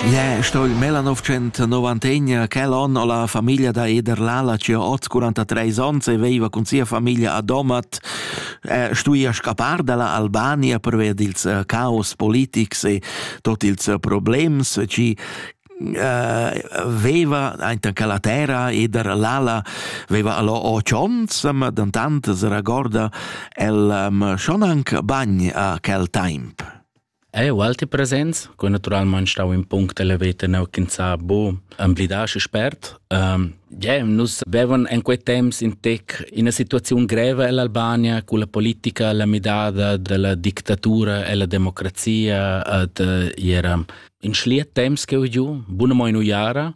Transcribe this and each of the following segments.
Yeah, sto il Melanov 190 quel on ho la famiglia da Eder Lala che ha 43 ans e veiva cun sia famiglia a Domat eh, stuia scappar dalla Albania per ver dils eh, caos politics e tot ils eh, problems ci uh, veva ainta che la terra ed er l'ala veva allo ocionz, ma dantant se ragorda el um, schon anc bagn a quel temp. Ei ualti presents, co naturalmein stau in punct elevator neu ch'ins ha bu emblidar schi spert. Um, yeah, nus vevan en quei temps in tec ina situaziun greva ell'Albania cu la politica, la midada della dictatura e la democrazia ad era in schliet temps che ho giu, buna mo in uiara.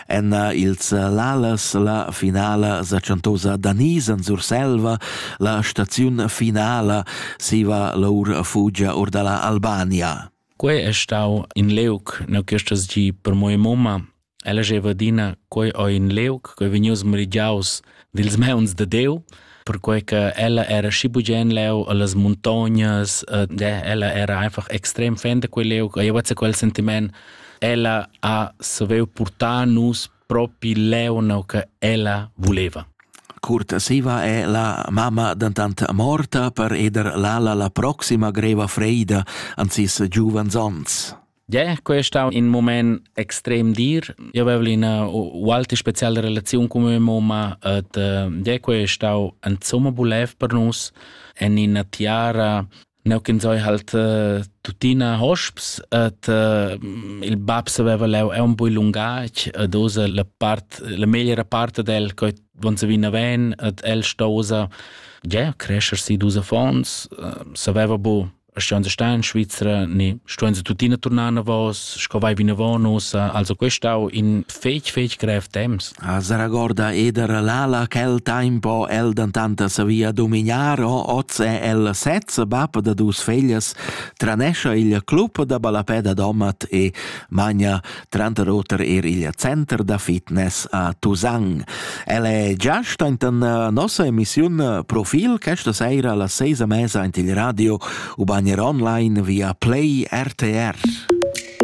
en ils Lalas la finala sa chantosa da Niz en Surselva, la staziun finala siva l'our fugia or da la Albania. Quei è stau in leuc neu questas gi per mia mamma. Ella jeva adina, quei o in leuc, quei vegnius merigiaus dils mauns de Deu, perquei che ella era schi bugen leu allas montognas, e ella era einfach extrem fan de quel leu, io vezza quel sentiment, ella ha saveu portar nus propi leu no che ella voleva. Curtasiva è la mamma dantante morta per eder Lala la proxima greva freida an sis giuvans ons. Ja, questo stau in moment extrem dir. Io avevo una ualta speciale relazione con mia mamma ed ja, questo stau insomma bulev per nus en una tiara Neu kin zoi halt uh, tutina hosps et uh, il bab saveva leu è un po lungac ed usa la part la meglio parte del che wenn se vina ven et el stosa ja crescer si dus fons uh, saveva bu Stian se star in Svizzera, ne stuan se tuttina tornar navos, sco vai vinavon ussa, also questau in fec fec grev temps. A Saragorda eder lala quel tempo el dantanta savia dominar o oze el sezza bap da dus feglias tranescia il club da balapeda domat e magna tranter oter er il Center da fitness a Tusang. El è giast anta nossa emissiun Profil questa sera alla seisa mesa ant il radio u bagner online via Play RTR.